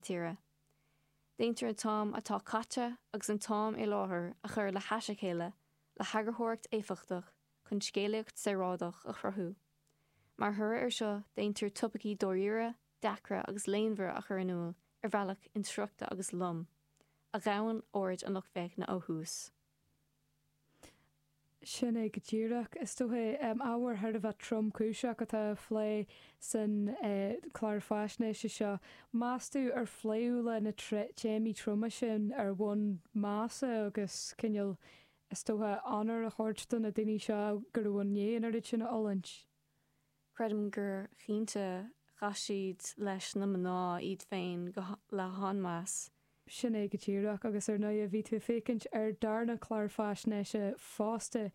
tíre. Déantar an t-am atá caite agus an t-am i láthair a chur le hais a chéile le heagarthóireacht éifeachtach chun scéalaíocht saoráideach a chruthú. Mar thoradh air seo déantar topaicí dáiríre, deacra agus léanmhara a chur in iúl ar bhealach insroichte agus lom, a ghabhann aird an lucht féachana ó thús. Sin é go díreach. Is dócha, ábhar thar a bheith tromchúiseach atá á phlé san clár faisnéise seo. Meastú ar phléadh le na téamaí troma sin ar bhonn measa agus cineál, is dócha, onóir a thabhairt do na daoine seo a bhí i ndiaidh an oiread sin a fhulaingt? Creidim gur cinnte chaith siad leis na mná iad féin le han-mheas. Sin é go díreach. Agus ar ndóighe bhí tú ag féachaint ar an darna clár faisnéise fosta,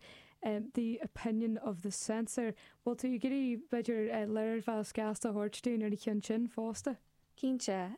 The Opinion of the Censor. Bhfuil tú ag iarraidh, b'fhéidir, léirmheas gasta a thabhairt dúinn ar an cheann sin fosta? Cinnte.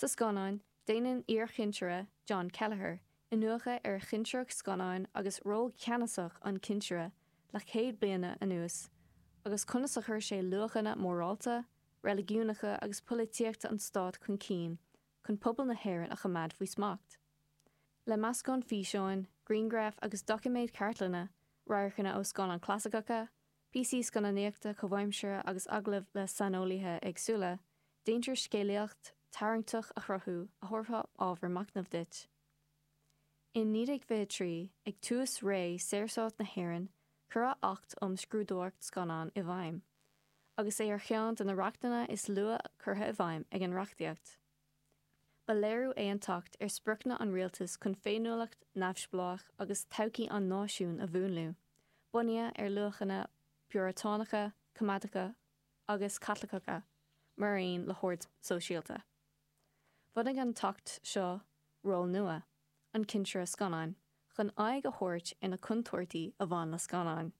Sa scannán, déanann iarchinsire John Kelleher iniúchadh ar chinsireacht scannáin agus ról ceannasach an chinsire le céad bliana anuas, agus conas a chuir sé luachanna morálta, reiligiúnacha agus polaitíochta an stáit chun cinn chun pobal na hÉireann a choimeád faoi smacht. Le meascán físeáin, grianghraf agus doiciméad cartlainne, radharcanna ó scannáin chlasaiceacha, píosaí scannánaíochta comhaimseartha agus agallaimh le saineolaithe éagsúla, déantar scéalaíocht tarraingteach a chruthú a thabharfadh ábhar machnaimh duit. In 1923, ag tús ré Saorstát na hÉireann, cuireadh Acht um Scrúdóireacht Scannán i bhfeidhm, agus é ar cheann de na reachtanna is luaithe curtha i bhfeidhm ag an reachtaíocht. Ba léiriú é an tAcht ar spriocanna an rialtais chun féiniúlacht neamhspleách agus todhchaí an náisiúin a mhúnlú, bunaithe ar luachanna piúratánacha, coimeádacha agus Caitliceacha, mar aon le hord sóisialta. Bhunaigh an tAcht seo ról nua, an cinsire scannán, chun aghaidh a thabhairt ar na contúirtí a bhain le scannáin.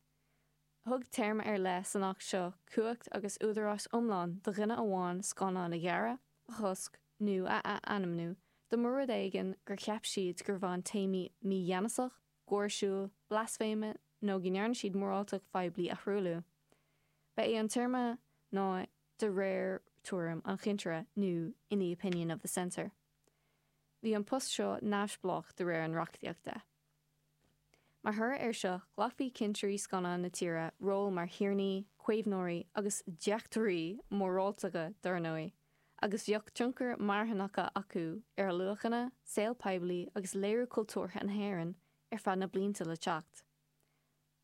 Thug téarma ar leith san Acht seo cumhacht agus údarás iomlán do dhuine amháin scannán a ghearradh, a chosc nó a athainmniú dá mba rud é gur cheap siad gur bhain téamaí mígheanasach, gáirsiúil, blaisféime nó go ndearna siad moráltacht phoiblí a thruailliú. Ba é an téarma ná 'de réir tuairim an chinsire' nó 'in the opinion of the censor'. Bhí an post seo neamhspleách de réir an reachtaíochta. Mar thoradh air seo, ghlacfadh cinsirí scannán na tíre ról mar thiarnaí, caomhnóirí agus deachtóirí móráltacha dá réir, agus bheadh tionchar marthanach acu ar luachanna, saol poiblí agus léiriú cultúrtha na hÉireann ar feadh na blianta le teacht.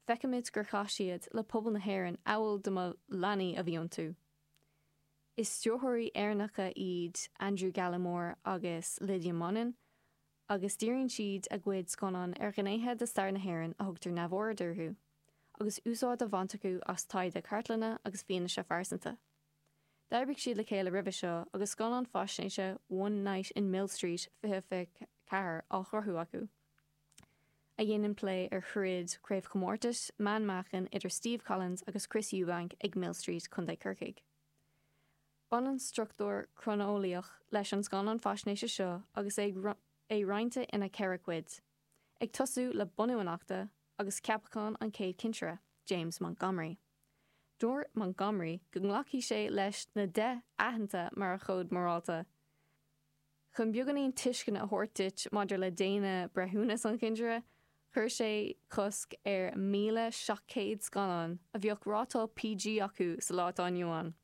Feicimid gur chaith siad le pobal na hÉireann amhail dá mba leanaí a bhí iontu. Is stiúrthóirí Éireannacha iad Andrew Gallimore agus Lydia Monin, agus díríonn siad a gcuid scannán ar ghnéithe de stair na hÉireann a thugtar neamhaird orthu, agus úsáid á bhaint acu as taighde cartlainne agus fianaise phearsanta. D'oibrigh siad le chéile roimhe seo agus scannán faisnéise One Night in Millstreet 2024 á chruthú acu, a dhéanann plé ar throid chraobhchomórtais meánmheáchain idir Steve Collins agus Chris Eubank ag Millstreet, Co. Corcaigh. Baineann struchtúr croineolaíoch leis an scannán faisnéise seo agus é roinnte ina ceithre chuid, ag tosú le bunú an Achta agus ceapachán an chéad chinsire, James Montgomery. Dúirt Montgomery go nglacfadh sé leis na deich aitheanta mar a chód morálta. Chun beagáinín tuisceana a thabhairt duit maidir le déine breithiúnas an chinsire, chuir sé cosc ar 1,700 scannán a bheadh rátáil PG acu sa lá atá inniu ann.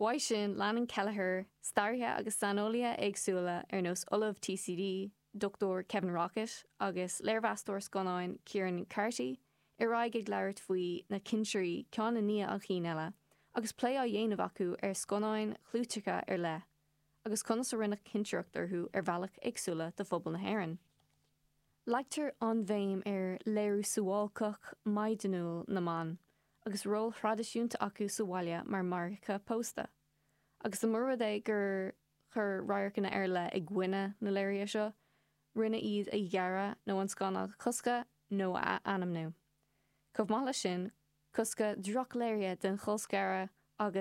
uaidh sin, leanann cléir, staraithe agus saineolaithe éagsúla ar nós Ollamh TCD, Dr Kevin Rockett agus léirmheastóir scannáin Ciaran Carty ar aghaidh ag labhairt faoi na cinsirí ceann i ndiaidh an chinn eile agus plé á dhéanamh acu ar scannáin chlúiteacha ar leith agus conas a rinneadh cinsireacht orthu ar bhealach éagsúla do phobal na hÉireann. Leagtar an-bhéim ar léiriú suáilceach, maighdeanúil na mban agus ról thraidisiúnta acu sa bhaile mar mháithreacha pósta, agus dá mba rud é gur chuir radharcanna ar leith i gcoinne na léirithe seo, rinneadh iad a ghearradh nó an scannán a choscadh nó a athainmniú. Chomh maith leis sin, coscadh drochléirithe den cholscaradh agus.